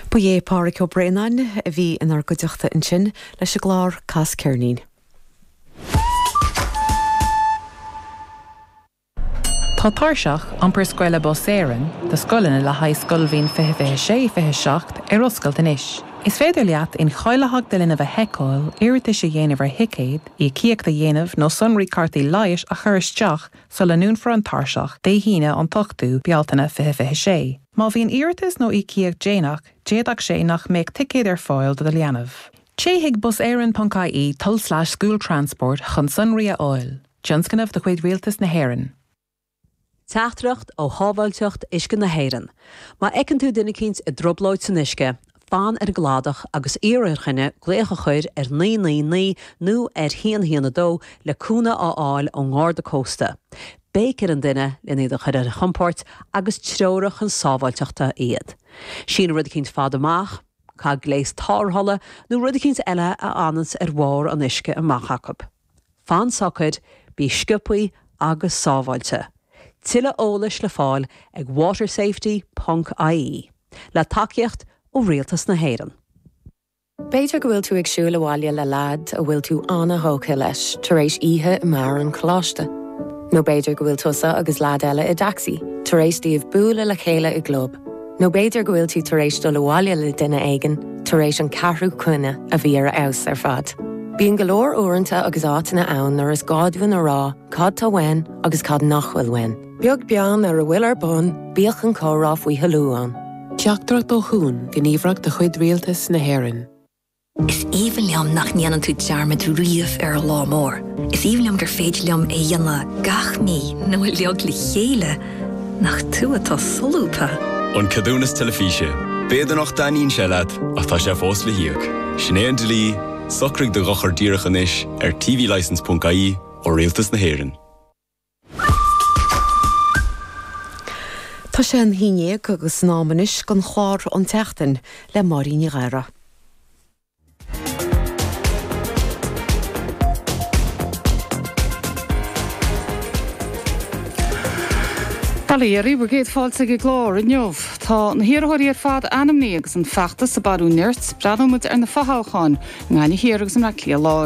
Ba é Pádhraic Ó Braonáin a bhí inár gcuideachta ansin leis an gclár Cas Ceirnín. Tá Tairseach Iompair Scoile Bus Éireann do scoileanna le haghaidh scoilbhliain 2026, 27 ar oscailt anois. Is féidir leat incháilitheacht do linbh a sheiceáil, iarratais a dhéanamh ar thicéad, íocaíocht a dhéanamh nó sonraí cártaí leighis a chur isteach sula ndúnfar an tairseach, Dé hAoine an t-ochtú Bealtaine fiche fiche sé. Má bhíonn iarratas nó íocaíocht déanach, d'fhéadfadh sé nach mbeadh ticéad ar fáil do do leanbh. Téigh chuig buseireann.ie tulslais school transport chun sonraí a fháil. Tionscnamh de chuid Rialtas na hÉireann. Teachtaireacht ó Shábháilteacht Uisce na hÉireann, Má fheiceann tú duine eicínt i dtrioblóid san uisce, fan ar an gcladach agus iarr ar dhuine glaoch a chur ar naoi naoi naoi nó ar haon haon a dó le cúnamh a fháil ón nGarda Cósta. Béic ar an duine len iad a chur ar a chompóirt agus treoraigh chun sábháilteachta iad. Sín rud eicínt fada amach, caith gléas tárrthála nó rud eicínt eile a fhananns ar bharr an uisce amach acu. Fan socair, bí sciobthaí agus sábháilte. Tuilleadh eolais le fáil ag watersafety ponc IE, le tacaíocht ó Rialtas na hÉireann. B'fhéidir go bhfuil tú ag siúl abhaile le leaid a bhfuil tú an-tógtha leis tar éis oíche i mbeár an choláiste. Nó b'fhéidir go bhfuil tusa agus leaid eile i dtacsaí tar éis daoibh bualadh le chéile i gclub. Nó b'fhéidir go bhfuil tú tar éis dul abhaile le duine éigin tar éis an ceathrú coinne a bhí ar a fheabhas ar fad. Bíonn go leor uaireanta agus áiteanna ann nuair is gá dúinn a rá cad tá uainn agus cad nach bhfuil uainn. Beag beann ar a bhfuil ar bun, bíodh an comhrá faoi thoiliú ann. Teachtaireacht ó Chuan, gníomhaireacht de chuid Rialtas na hÉireann. Is aoibhinn liom nach ndéanann tú dearmad riamh ar an lá mór. Is aoibhinn liom gur féidir liom é a dhéanamh gach mí nó uilig le chéile nach tú atá solúbtha. An Ceadúnas Teilifíse. B'fhéidir nach dtaitníonn sé leat ach tá sé fós le híoc. Sin é an dlí, socraigh do dhochar díreach anois ar tvlicence.ie ó Rialtas na hÉireann. Tá sé a haon déag agus in am anois don chlár An tSeachtain le Máirín Ní Ghadhra. Bail ó Dhia oraibh, bhur gcéad fáilte ag an gclár inniu. Tá na hiarrthóirí ar fad ainmnithe agus an feachtas ag bailiú nirt, breathnóimid ar na fothoghcháin i nGaillimh Thiar agus i mBaile Átha Cliath Láir.